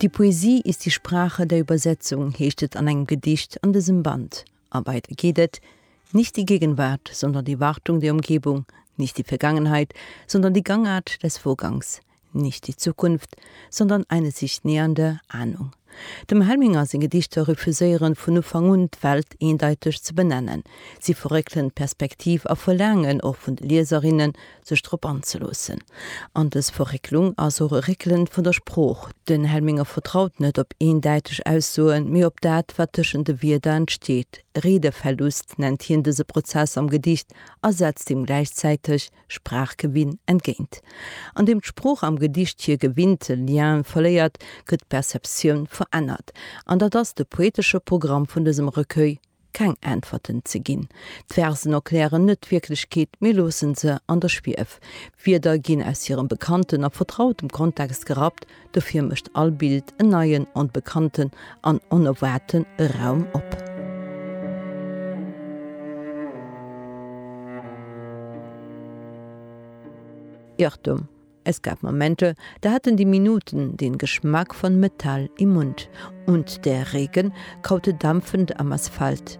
Die Poesie ist die Sprache der Übersetzung heescht et an engem Gedicht an dësem Band. A weider geet et, Nicht die Gegenwart, sondern die Wartung der Umgebung, nicht die Vergangenheit, sondern die Gangart des Vorgangs, nicht die Zukunft, sondern eine sich nähernde Ahnung. Dem Helminger seng Gedichter refuséieren vun Ufank un d'Welt eendeiteg ze benennen. Si verréckelen d'Perspektiv a verlaangen och vun de Lieserinnen, sech drop anzeloossen. An dës Verrécklung ass och e Réckelen vun der Sprooch. Den Helminger vertraut net op eendeiteg Aussoen, mee op dat, wat tëschent de Wierder entsteet. Redeverlust nennt hien dëse Prozess am Gedicht a setzt deem gläichzäiteg Sprachgewinn entgéint. An deem d'Sprooch am Gedicht hir gewinnte Lien verléiert, gëtt d'Perceptioun verännert. An dat ass de poetesche Programm vun dësem Recueil, keng Äntwerten ze ginn. D'Versen erklären net d'Wierklechkeet, mee loosse se an der Schwief. Wierder ginn aus hirem bekannten a vertrautem Kontext gerappt, Dofir mécht all Bild en neien, onbekannten an onerwaarten Raum op. Irrtum, Es gab Momente, da haten déi Minuten den Geschmack von Metall im Mund und der Regen kaute dampfend am Asphalt.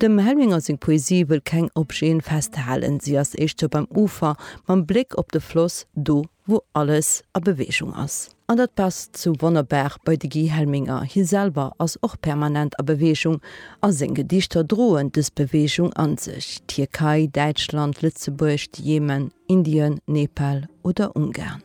Dem Helminger seng Poesie wëll keng Objeten festhalen, si ass éischter beim Ufer, mam Bléck op de Floss, do wou alles a Beweegung ass. An dat passt sou wonnerbar bei de Guy Helminger, hie selwer ass och permanent a Beweegung a seng Gedichter droen dës Beweegung an sech, Tierkei, Däitschland, Lëtzebuerg, de Jemen, Indien, Nepal oder Ungarn.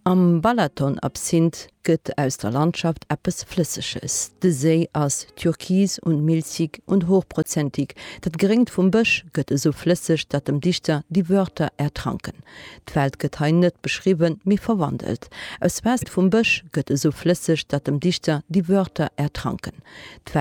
Am Balaton-Absinth gëtt aus der Landschaft eppes Flësseges. De Séi ass türkis und milchig und hochprozentig, dat Gréngt vum Bësch gëtt esou flësseg, datt dem Dichter déi Wörter ertranken. D'Welt gëtt hei net beschriwwen, mee verwandelt. Aus Waasser vum Bësch gëtt esou flësseg, datt dem Dichter déi Wörter ertranken. D'Welt.